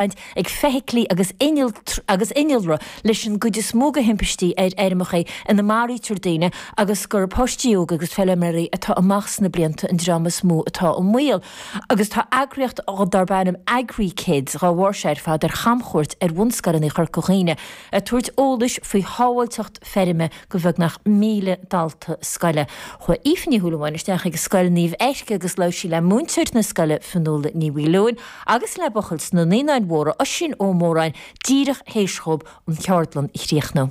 baint ag feithiclí agus agus innealra leis an gcuid is mó de thimpistí ar fheirmeacha ina maraítear daoine agus gurb páistí óga agus feilméaraí atá amach sna blianta an dream is mó atá i mbaol agus tá eagraíocht darb ainm AgriKids dhá bharr seo ar fad ar chamchuairt ar bhunscoileanna Chorca Dhuibhne ag tabhairt eolais faoi shábháilteacht feirme go bheagnach 1,000 dalta scoile. Chuaigh Aoife Ní Shúilleabháin isteach ag Scoil Naomh Eirc agus labhair sí le múinteoir na scoile Fionnuala Ní Mhaoileoin agus le buachaill sna Naíonáin Mhóra, Oisín Ó Móráin, díreach théis dhóibh an cheardlann a chríochnú.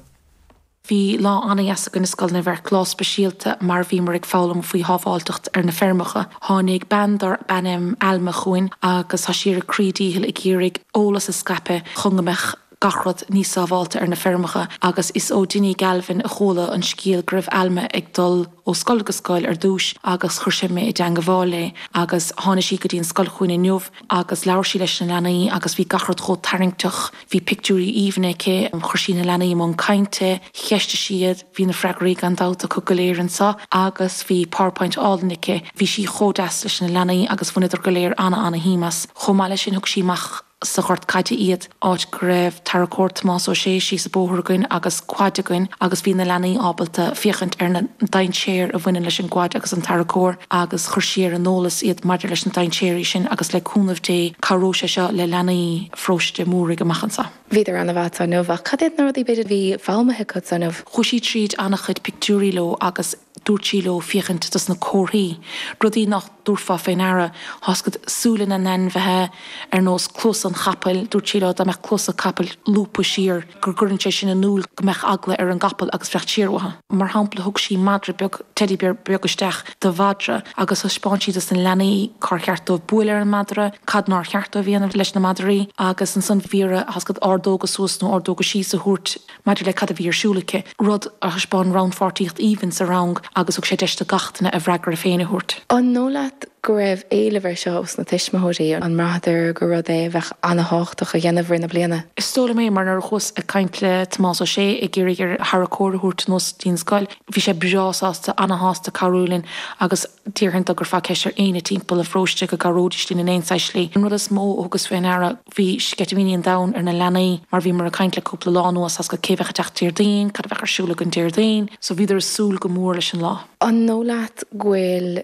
Bhí lá ana-dheas againn i Scoil Naomh Eirc, lá speisialta mar bhíomar ag foghlaim faoi shábháilteacht ar na feirmeacha. Tháinig bean darb ainm Alma chugainn agus tá sí ar a croí dícheall ag iarraidh eolas a scaipeadh chun go mbeadh. gach rud níos sábháilte ar na feirmeacha agus is ó Dinny Galvin a chuala an scéal go raibh Alma ag dul ó scoil go scoil ar dtúis agus chuir sé mé i dteangmháil léi agus tháinig sí go dtí an scoil chugainn inniu agus labhair sí leis na leanaí agus bhí gach rud chomh tarraingteach, bhí pictiúirí aoibhne aici, chuir sí na leanaí i mbun cainte, cheistigh sí iad, bhí na freagraí gan dabht acu go léir anseo agus bhí powerpoint álainn aici, bhí sí chomh deas leis na leanaí agus bhaineadar go léir ana-ana-shuim as. Chomh maith leis sin thug sí amach. sa ghort caide iad, áit go raibh tarracóir, Tomás Ó Sé, síos a' bóthar againn agus quad againn agus bhí na leanaí ábalta féachaint ar na dainséir a bhaineann leis an gquad agus an tarracóir agus chuir sí ar an eolas iad maidir leis na dainséirí sin agus le cúnamh Dé cabhróidh sé seo le leanaí Pharóiste Múraigh amach anseo. Bhíodar ana-mhaith inniu ach cad iad na rudaí b'fhéidir a bhí foghlamtha acu inniu? Chuaigh sí tríd ana-chuid pictiúirí leo agus. dúirt sí leo féachaint dos na comharthaí, rudaí nach dtabharfá fé ndeara, tá's agat súile na n-ainmhithe, ar nós cluasa an chapaill, dúirt sí leo dá mbeadh cluasa capaill lúbtha siar go gcuireann sé sin in iúil go mbeadh eagla ar an gcapall agus fanacht siar uathu. Mar shampla thug sí madra beag, teddy beag isteach do mhadra agus thaispeáin sí dos na leanaí cár cheart dóibh buail ar an madra, cad nár cheart dóibh a dhéanamh leis na madraí agus ansan bhí orthu tá's agat ordóga suas nó ordóga síos a thabhairt maidir le cad a bhí ar siúl aici, rud a thaispeáin rannpháirtíocht aoibhinn sa rang agus thug sé deis do gach duine a bhfreagra féin a thabhairt. An dóigh leat go raibh éileamh air seo ós na tuismitheoirí? An mbraitheadar gur rud é a bheadh ana-thábhachtach a dhéanamh i rith na bliana? Is dóigh liom é, mar nuair a chuas ag caint le Tomás Ó Sé ag iarraidh air a tharracóir a thabhairt anuas dtí'n scoil, bhí sé breá sásta, ana-shásta cabhrú linn agus, Déarfainn dá gcuirfeá ceist ar éinne timpeall a' pharóiste go gcabhróidís linn in aon saghas slí. An rud is mó a thugas fé ndeara, bhí sceitimíní an domhain ar na leanaí mar bhíomar ag caint le cúpla lá anuas tá's agat cé bheadh ag teacht Déardaoin, cad a bheadh ar siúl againn Déardaoin, so bhíodar ag súil go mór leis an lá. An dóigh leat go bhfuil